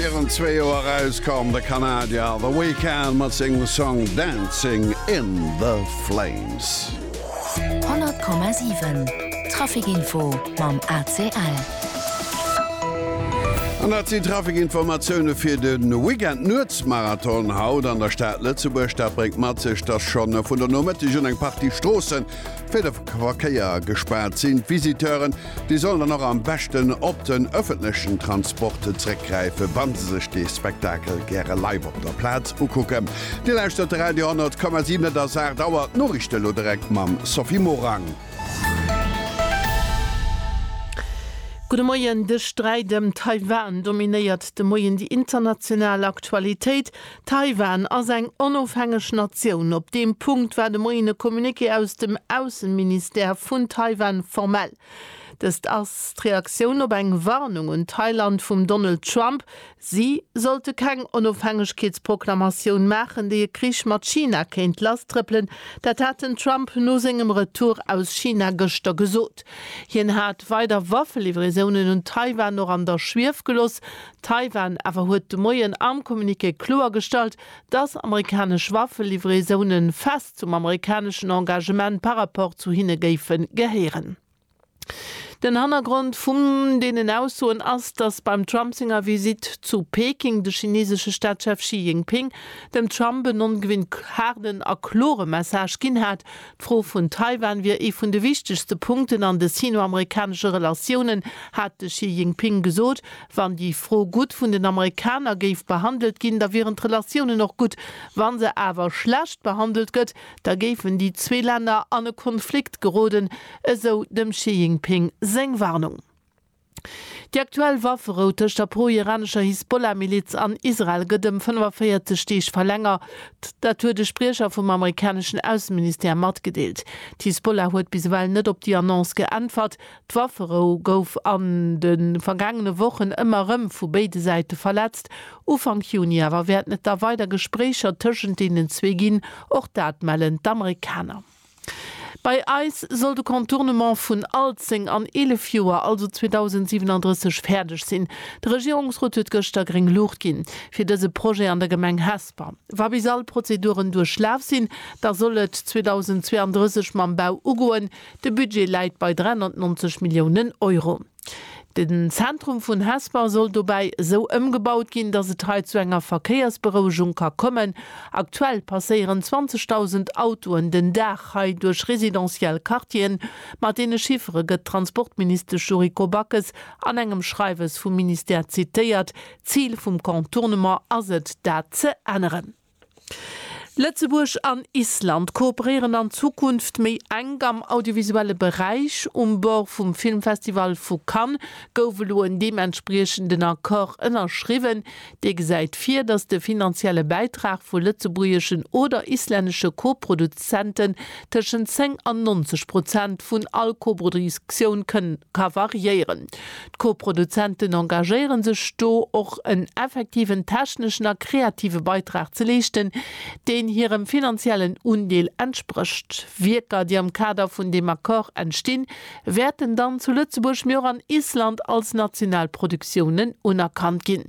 Virun zwee Joer erauskomm, de Kanadier The Weeknd mat sengem Song Dancing in the Flames. 100,7 Traficinfo mam ACL. An dat sinn d'Traficinformatioune fir de Weekend. Nuetsmarathon haut an der Stad Lëtzebuerg. Dat bréngt mat sech, dass scho vun der Nomëtteg un eng Partie Stroosse fir de Verkéier gespaart sinn. D'Visiteuren Déi sollen dann och am beschten op den ëffentlechen Transport zréckgräifen, wa se sech de Spektakel gäre live op der Plaz ukucken. Dir lauschtert de Radio 10,7. Et ass 8 Auer. D'Noriichte elo direkt mam Sophie Morang. Gudde Moien. De Sträit ëm Taiwan dominéiert de Moien déi international Aktualitéit. Taiwan ass eng onofhängeg Natioun. Op deem Punkt war de Moien e Communiqué aus dem Ausseministère vun Taiwan formell. Dëst ass d'Reaktioun op eng Warnung un Thailand vum Donald Trump, si sollte keng Onofhängegkeetsproklamatioun maachen, déi e Krich mat China kéint lasstrëppelen. Dat hat den Trump no sengem Retour aus China gëschter gesot. Hien hat weider Waffelivraisonen un Taiwan och an der Schwief geloss, Taiwan awer huet de Moien am Communiqué kloergestallt, datt amerikanesch Waffelivraisone fest zum amerikaneschen Engagement par rapport zu hinne géife gehéieren. Den Hannergrond vun deenen Aussoen ass, datt beim Trump senger Visitt zu Peking de chinesesche Staatschef Xi Jinping dem Trump en ongewinnt haarden a klore Message ginn hat, D'Fro vun Taiwan wier ee vun de wichtegste Punkten an de sino-amerikanesche Relatiounen, hat de Xi Jinping gesot. Wann déi Fro gutt vun den Amerikaner géif behandelt ginn, da wieren d'Relatiounen och gutt. Wa se awer schlecht behandelt gëtt, da géifen déi zwee Länner an e Konflikt geroden, esou dem Xi Jinping seng Warnung. Déi aktuell Wafferou tëscht der pro-iranescher Hisbollah-Miliz an Israel gëtt ëm 45 Deeg verlängert. Dat huet e Spriecher vum amerikaneschen Ausseministère matgedeelt. D'Hisbollah huet bis ewell net op déi Annonce geäntwert. D'Wafferou gouf an de vergaangene Wochen ëmmer erëm vu béide Säite verletzt. Ufank Juni awer wäerten et da weider Gespréicher tëschent deenen zwee ginn, och dat mellen d'Amerikaner. Bei eis soll de Contournement vun Alzeng an 11 Joer, also 2037, fäerdeg sinn. De Regierungsrot huet gëschter gréng Luucht ginn, fir dëse Projet an der Gemeng Hesper. Wa bis all Prozeduren duerchlaf sinn, da soll et 2032 mam Bau ugoen. De Budget läit bei 390 Milliounen Euro. Den Zentrum vun Hesper soll dobäi esou ëmgebaut ginn, datt et hei zu enger Verkéiersberouegung ka kommen. Aktuell passéieren 20.000 Autoen den Dag hei duerch residentiell Quartieren. Mat deene Chiffere gëtt d'Transportministesch Yuriko Backes an engem Schreiwes vum Ministère zitéiert. D'Zil vum Contournement ass et, dat ze änneren. Lëtzebuerg an Island kooperéieren an Zukunft méi enk am audiovisuelle Beräich. Um Bord vum Filmfestival vu Cannes gouf elo en deementspriechenden Accord ënnerschriwwen, dee gesäit vir, datt de finanzielle Bäitrag vu lëtzebuergeschen oder islännesche Koproduzenten tëschent 10 an 90 Prozent vun all Koproduktioun ka variéieren. D'Co-Produzenten engagéiere sech do, och en effektiven techneschen a kreative Beitrag ze leeschten, deen hirem finanziellen Undeel entsprécht. Wierker, déi am Kader vun deem Accord entstinn, wäerten dann zu Lëtzebuerg, mee och an Island als national Produktiounen unerkannt ginn.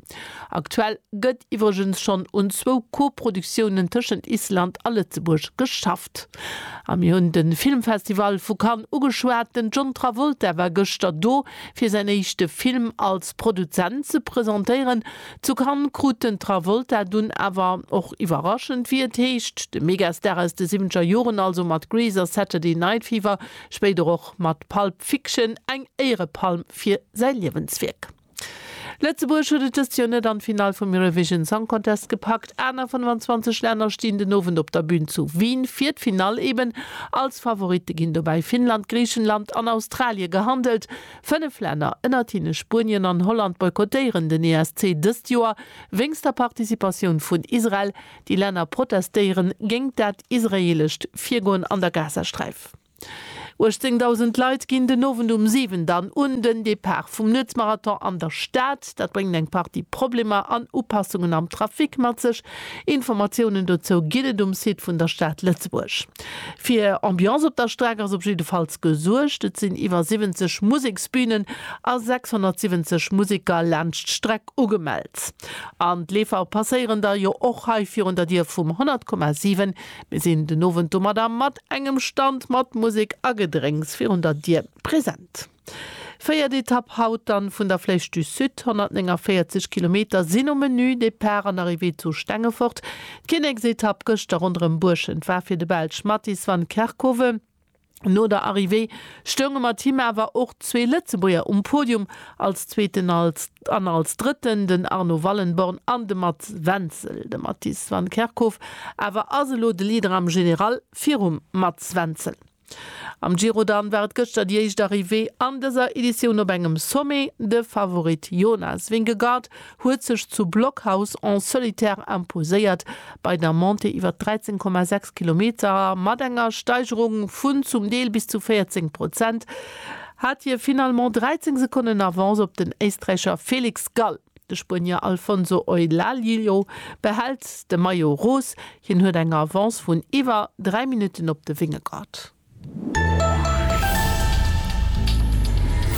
Aktuell gëtt iwwregens schonn un zwou Co-Produktiounen tëschent Island a Lëtzebuerg geschafft. A mir hunn de Filmfestival vu Cannes ugeschwat. Den John Travolta war gëschter do, fir säin éischte Film als Produzent ze presentéieren. Zu Cannes krut den Travolta dunn awer och iwwerraschend, wéi et heescht, de Megastar aus de siwwenzeger Joren, also mat Grease a Saturday Night Fever, spéider och mat Pulp Fiction, eng Éierepalm fir säi Liewenswierk. Lëtzebuerg huet et dëst Joer net an d'Finall vum Eurovision Song Contest gepackt. Aner 25 Länner stinn den Owend op der Bün zu Wien fir d'Finall. Eben als Favoritte ginn dobäi Finnland, Griichenland an Australie gehandelt. Fënnef Länner, ënnert hinne Spuenien an Holland, boykottéieren den ESC dëst Joer wéinst der Participatioun vun Israel. Déi Länner protestéieren géingt dat israeelescht Virgoen an der Gazasträif. 18.000 Leit ginn den Owend um 7 dann un den Depart vum Nuetsmarathon an der Stad. Dat bréngt eng Partie Problemer an Upassungen am Trafic mat sech. Informatiounen dozou ginn et um Site vun der Stad Lëtzebuerg. Fir Ambiance op der Streck ass op jiddefalls gesuergt. Et sinn iwwer 70 Museksbünen a 670 Museker laanscht d'Streck ugemellt. An d'Leefer passéieren da jo och hei virun der Dier vum 100,7. Mir sinn den Owend domadder mat Engem Stand mat Musek a Gedrénks virun der Dier. Present! Véiert Etapp haut dann vun der Flèche du Sud. 149 Kilometer sinn um Menü, Départ an Arrivée zu Stengefort. D'Kinneksetapp gëschter ronderëm Buerschent war fir de Belsch Mattis van Kerckhove. No der Arrivée stounge mat him awer och zwee Lëtzebuerger um Podium, als Zweeten als. An als Drëtten den Arno Wallenborn an de Mats Wenzel. De Mattis van Kerkhof awer ass elo de Leader am General virum Mats Wenzel. Am Giro dann war et gëschter déi éischt Arrivée an dëser Editioun op engem Sommet. De Favorit Jonas Vingegaard huet sech zu Blockhaus en solitaire imposéiert bei der Montée iwwer 13,6 Kilometer mat enger Steigerung vun zum Deel bis zu 14 Prozent. hat hie finalement 13 Sekonnen Avance op den Éisträicher Felix Gall. De Spuenier Alfonso Eulaliu behält de Maillot Rose, hien huet eng Avance vun iwwer 3 Minutten op de Vingegaard.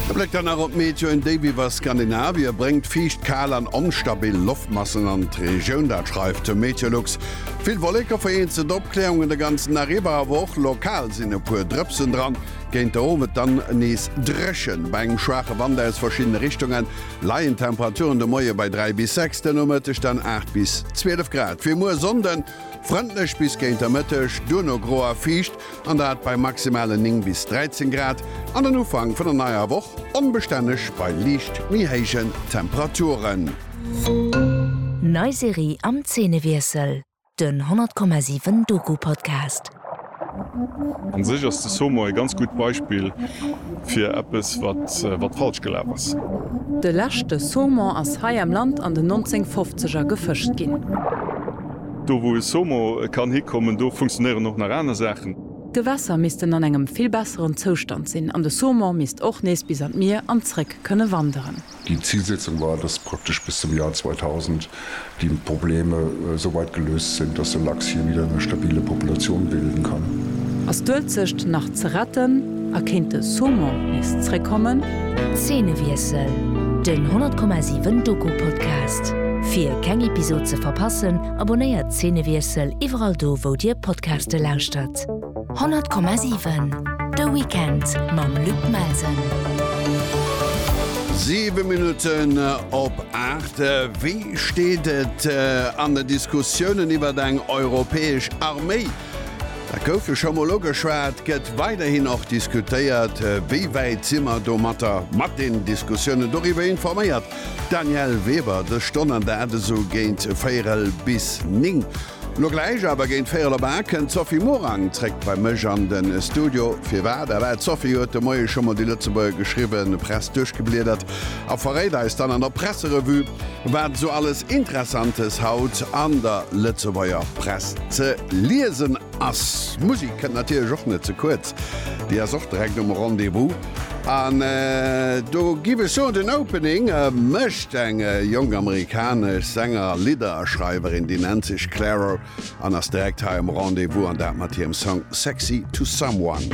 E Bléck dann nach op d'Meteo, En Déif iwwer Skandinavie bréngt fiicht, kal an onstabil Loftmassen an d'Regioun, dat schreift de Meteolux. Vill Wolleke, vereenzelt Opkläerungen de ganzen Dag iwwer, awer och lokal sinn e puer Drëpsen dran. Géint de Owend dann nees dréchen, bei engem schwaache Wand aus verschiddene Richtunge leien d'Temperaturen de Moie bei 3 bis 6, de Nomëtteg dann 8 bis 12 Grad. Fir muer Sonnde frëndlech bis géint de Mëtteg, duerno gro a fiicht, an dat bei maximale 9 bis 13 Grad, an den Ufank vun der neier Woch onbestänneg bei liicht méi héijen Temperaturen. Nei Serie am Zeenewiessel. Den 100,7 Doku-Podcast. An sech ass de Somo e ganz gutt Beispill fir eppes wat wat falsch gelaf ass. De leschte Saumon ass hei am Land an den 1950er gefëscht ginn. Do wou e Somo kann hikommen, do funktionéieren och nach aner Saachen. D'Gewässer missten an engem vill besseren Zoustand sinn an de Saumon misst och nees bis an d'Mier an zréck kënne wanderen. Déi Zilsetzung war, dass praktesch bis zum Joer 2000 déi Probleme esou weit geléust sinn, dass de Lachs hie wieder eng stabile Populatioun bilden kann. Ass d'Uelzecht nach ze retten a kéint de Saumon nees zréckkommen? Zeenewiessel, Den 10,7 Doku-Podcast. Fir keng Episod ze verpassen, abonnéiert Zeenewiessel iwwerall do wou dir Podcaste lauschtert. 100,7 De Weekend mam Luc Melsen. 7 Minutten op 8 Wéi steet et äh, an de Diskussiounen iwwer eng europäesch Arméi? Dat gouf jo scho mol ugeschwat, gëtt weiderhin och diskutéiert. Äh, wéi wäit si mer domatter mat den Diskussiounen? Doriwwer informéiert d'Danièle Weber dës Stonn an dat esou géint véierel bis néng. Lo gläich awer géint véierel op 8 kënnt d'Sophie Morang zréck bei mech an de Studio. Firwat? A wat, Sophie, huet de Moie scho mol déi Lëtzebuerger geschriwwen Press duerchgebliedert a verréit eis dann an der Presserevue, wat esou alles Interessantes haut an der Lëtzebuerger Press ze liesen ass. Musik kënnt natierlech och net ze kuerz, déi ass och direkt um Rendez-vous. An do giff ech soen, den Opening mécht eng jonk amerikanesch Sänger a Lidderschreiwerin, déi nennt sech Clairo an ass direkt hei am Rendez-Vous, an dat mat hirem Song Sexy to Someone.